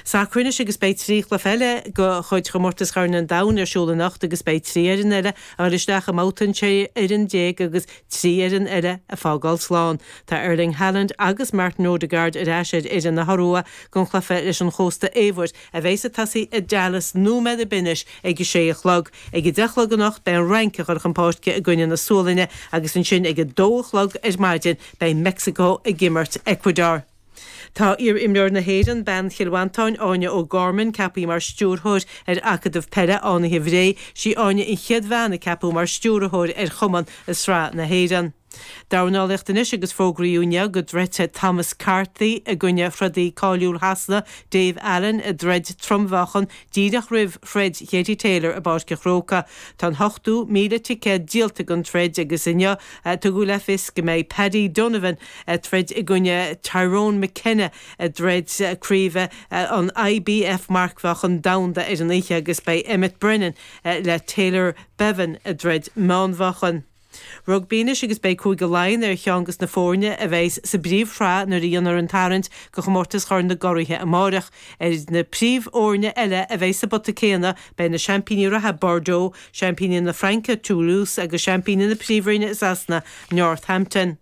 Sacar anois agus beidh trí chluiche eile de chuid Chomórtas Chorn an Domhain ar siúl anocht agus beidh trí fhoireann eile ag dul isteach i mbabhta an 16 fhoireann agus trí fhoireann eile ag fágáil slán. Tá Erling Haaland agus Martin Odegaard ar ais ar fhoireann na hIorua don chluiche leis an Chósta Eabhair, a bheas ag tosaí i Dallas nóiméad ar bith anois ag a sé a chlog. Ag a deich a chlog anocht beidh an Fhrainc ag cur chun páirce i gcoinne na Sualainne agus ansin ag a dó a chlog ar maidin beidh Meicsiceo ag imirt Ecuador. Tá iar-imreoir na hÉireann, bean Chill Mhantáin, Áine O'Gorman, ceapaithe mar Stiúrthóir ar Acadamh Peile Fhánaithe Bhré. Sí Áine an chéad bhean a ceapadh mar Stiúrthóir ar chumann i Sraith na hÉireann. Dornálaíocht anois agus fógraíodh inniu go dtroidfidh Thomas Carty i gcoinne throdaí cáiliúil Shasana, Dave Allen, i dtroid trom-mheáchan díreach roimh throid Katie Taylor i bPáirc an Chrócaigh. Tá an t-ochtó míle ticéad díolta don troid agus inniu a tugadh le fios go mbeidh Paddy Donovan, ag troid i gcoinne Tyrone McKenna i dtroid craoibhe an IBF Marcmheáchan Domhanda ar an oíche agus beidh Emmet Brennan le Taylor Bevan i dtroid meánmheáchan. Rugbaí anois agus beidh Cúige Laighean ar cheann de na foirne a bheidh sa bpríomhshraith nuair a dhéanfar an tarraingt go chomórtas Chorn na gCuraithe amárach. Ar na príomhfhoirne eile a bheidh sa bpota céanna, beidh na seaimpíní reatha Bordeaux, seaimpíní na Fraince Toulouse agus seaimpíní na Príomhroinne i Sasana, Northampton.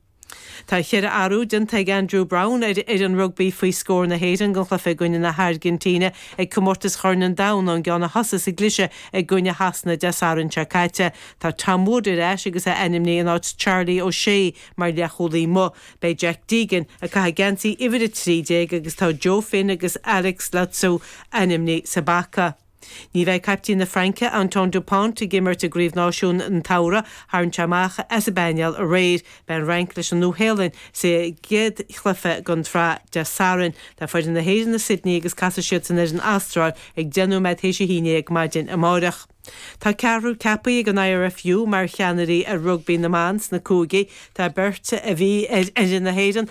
Tá ceithre athrú déanta ag Andrew Browne ar fhoireann rugbaí faoi scór na hÉireann don chluiche i gcoinne na hAirgintíne ag Comórtas Chorn an Domhain ón gceann a thosaigh sa gcliseadh i gcoinne Shasana Dé Sathairn seo caite. Tá Tom Wood ar ais agus é ainmnithe in áit Charlie O'Shea mar leathchúlaí amuigh. Beidh Jack Deegan ag caitheamh geansaí uimhir 13 agus tá Joe Finn agus Alex Lautsou ainmnithe sa bpaca. Ní bheidh caiptín na Fraince, Antoine Dupont, ag imirt i gCraobh Náisiún an tSamhraidh. Tharraing sé amach as an bpainéal aréir. Beidh an Fhrainc leis an Nua-Shéalainn sa gcéad chluiche den tsraith Dé Sathairn. Tá foireann na hÉireann i Sydney agus casfaidh siadsan ar an Astráil ag 10 nóiméad théis a haon déag maidin amáireach. Tá ceathrar ceapaithe ag an IRFU mar cheannairí ar rugbaí na mban sna cúigí. Tá beirt a bhí ar fhoireann na hÉireann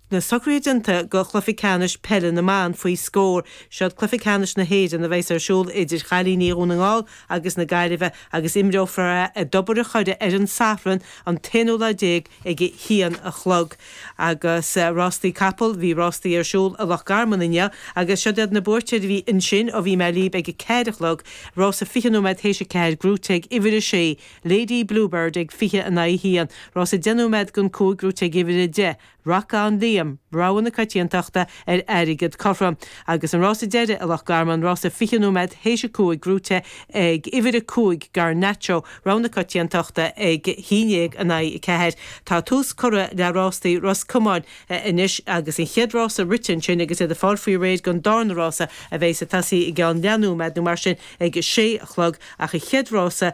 Na socruithe déanta go Cluiche Ceannais Peile na mBan faoi scór. Seo'd Cluiche Ceannais na hÉireann a bheas ar siúl idir chailíní Dhún na nGall agus na Gaillimhe agus imreofar é i dTobar a' Choire ar an Satharn an t-aonú lá déag ag a haon a chlog. Agus rástaí capall, bhí rástaí ar siúl i Loch Garman inniu agus seo'd iad na buaiteoirí a bhí ansin ó bhí mé lib ag a ceathair a chlog, rása fiche nóiméad théis a ceathair gnóite ag uimhir a sé, Lady Bluebird ag fiche in aghaidh a haon, rása deich nóiméad don cúig gnóite ag uimhir a deich, Racán Liam, rogha na coitiantachta ar airgead cothrom. Agus an rása deiridh i Loch Garman, rása fiche nóiméad théis a cúig buaite ag uimhir a cúig Garnacho, rogha na coitiantachta ag haon déag in aghaidh a ceathair, tá tús curtha le rástaí Ros Comáin anois agus an chéad rása rite ansin agus iad ag fáil faoi réir don darna rása a bheidh ag tosaí i gceann leath nóiméad nó mar sin ag a sé a chlog ach an chéad rása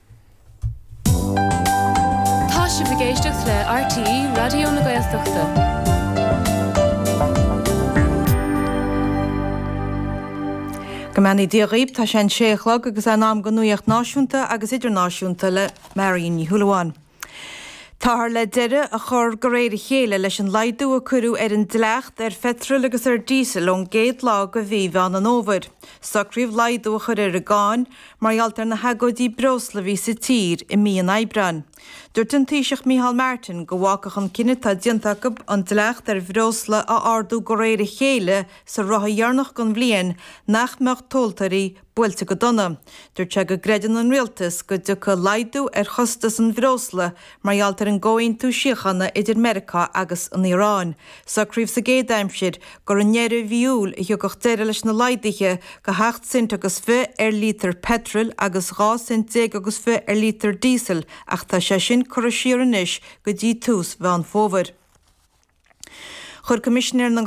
Tá sibh ag éisteacht le RTÉ Raidió na Gaeltachta. Go mbeannaí Dia dhaoibh, tá sé a sé a chlog agus é in am don nuacht náisiúnta agus idirnáisiúnta le Marion Ní Shúilleabháin. Táthar le deireadh a chur de réir a chéile leis an laghdú a cuireadh ar an dleacht ar pheitreal agus ar díosal ón gcéad lá de mhí Mheán an Fhómhair. Socraíodh laghdú a chur ar an gcáin mar gheall ar na hagóidí breosla a bhí sa tír i mí an Aibreáin. Dúirt an Taoiseach Micheál Martin go bhfágfadh an cinneadh atá déanta acu an dleacht ar bhreosla a ardú de réir a chéile sa ráithe dheireanach den bhliain nach mbeadh tomhaltóirí buailte go dona. Dúirt sé go gcreideann an Rialtas go dtiocfaidh laghdú ar chostas an bhreosla mar gheall ar an gcomhaontú síochána idir Meiriceá agus an Iaráin. Socraíodh sa gcéad aimsir gur i ndeireadh mhí Iúil a thiocfadh deireadh leis na laghduithe de sheacht cent agus fiche ar lítear peitril agus dhá cent déag agus fiche ar lítear díosail ach tá sé sin curtha siar anois go dtí tús Mheán Fómhair. Chuir Coimisinéir na.